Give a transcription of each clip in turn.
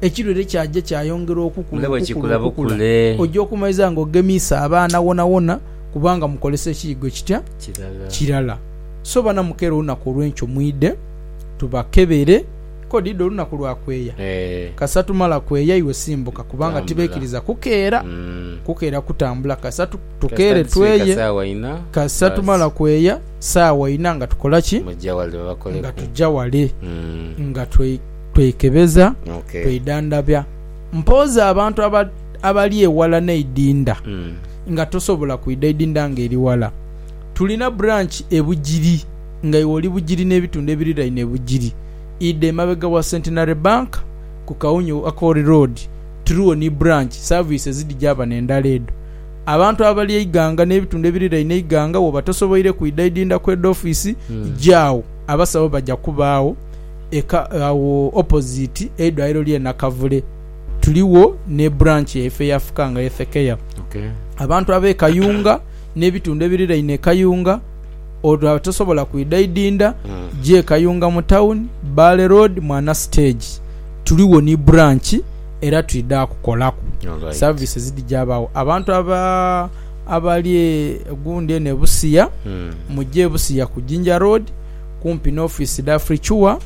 ekilwere kyaja kyayongera okukula, okukula, okukula, oja okumaliza nga ogemiisa abaana wonawona kubanga mukolesa ekiyigo ekitya? Kirala. So bana mukeera olunaku olwenkyo mwidhe tubakebere. Ko dhidha olunaku lwa kweya? Kasita tumala kweya iwe simbuka kubanga tibeikiriza kukeera. Kukeera kutambula kasita tukeere tweye. Kasita tumala kweya saawa inha nga tukola ki? Nga tuja wale. Nga. twekebeza, twedhandhabya. Mpoozi abantu abali eghala n'eidinda nga tosobola kwidha idinda nga eri ghala. Tulina branch e Bugiri nga iwe oli Bugiri n'ebitundu ebiriraine Bugiri. Idha emabega wa Centenary Bank ku Kaunyu Akori Road tuligho ni branch. Service ezidhija bano endala edho. Abantu abali e Iganga n'ebitundu ebiriraine Iganga woba tosoboire kwidha idinda kw'edha office, ja agho abasawo baja kubaagho. eka agho opposite eidwaliro lye Nakavule. Tuligho ne branch yaife eya Fukanga Health Care. Abantu abe Kayunga ne bitundu ebiriraine e Kayunga olwo abatasobola kwidha idindha gya e Kayunga mu town, Bbaale Road, Mwana Stage. Tuligho ni branch era twidha kukolaku. Services dhija bagho. Abantu aba abali e gundi eno e Busia, muje e Busia ku Jinja Road. kumpi n'ofiisi dha Africure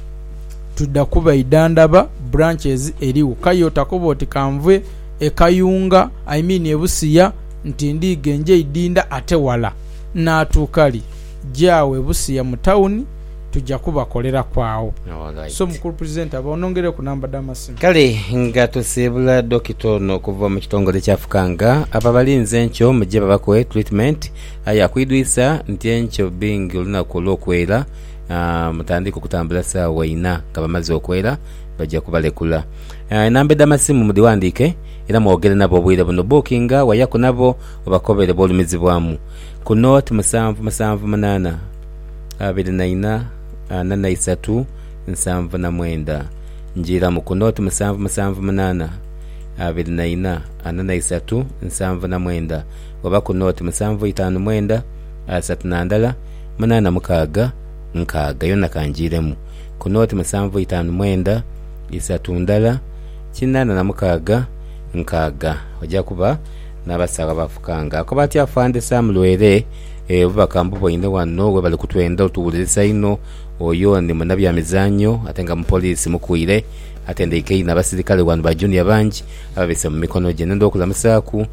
tuda kuba idhandhaba branches erigho. Kayo takoba oti kanve e Kayunga, I mean e Busia nti ndiidha nje idhindha ate wala. Naatuuka li? Gyawo e Busia mu town tuja kubakoleraku agho. So mukulu presenter ba onongereku number dha masimu. Kale nga tusiibula Dokita ono okuva mu kitongole kya Fukanga, abo abalinze enkyo muje babakoe treatment. Aye akwidwisa nti enkyo bingi olunaku olw'okwera mutandika okutambula saawa ina nga bamaze okwera baja kubalekula. Enamba edh'amasimu mudhiwandiike era mwogere nabo obwire buno. Bookinga wayaku nabo obakobere bwolumizibwamu ku nooti musanvu musanvu munaana abiri na ina ana na isatu nsanvu na mwenda. Njiiramu ku nooti musanvu musanvu munaana abiri na ina ana na isatu nsanvu na mwenda. oba ku nooti musanvu itaanu mwenda, asatu na ndala, munaana mukaaga, nkaaga, yona kangiiremu, ku nooti musanvu itaanu mwenda, isatu ndala, kinaana na mukaaga, nkaaga, oja kuba n'abasaagho abafukanga. Akoba ati Afande Sam Lwere, Ee, obubaka mbuboine wano we bali kutwenda otuwulirisa inho. Oyo ni munabyamizaanyo ate nga mupoliisi mukuire. Atendeikeine abasirikale wano ba Junior bangi ababise mu mikono gye. Nenda okulamusaaku.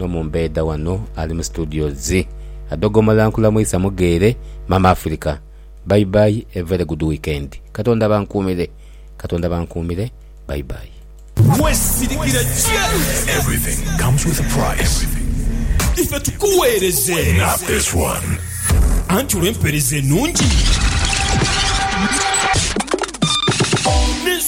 N'omumbeedha wano ali mu studios adhogomola nkulamwisa mugheere Mama Africa bye bye a very good weekend katonda abankuumire katonda abankuumire bye bye. Gwe sirikira Chelsea. Ife tukuweereze. Anti olw'empeereza enungi.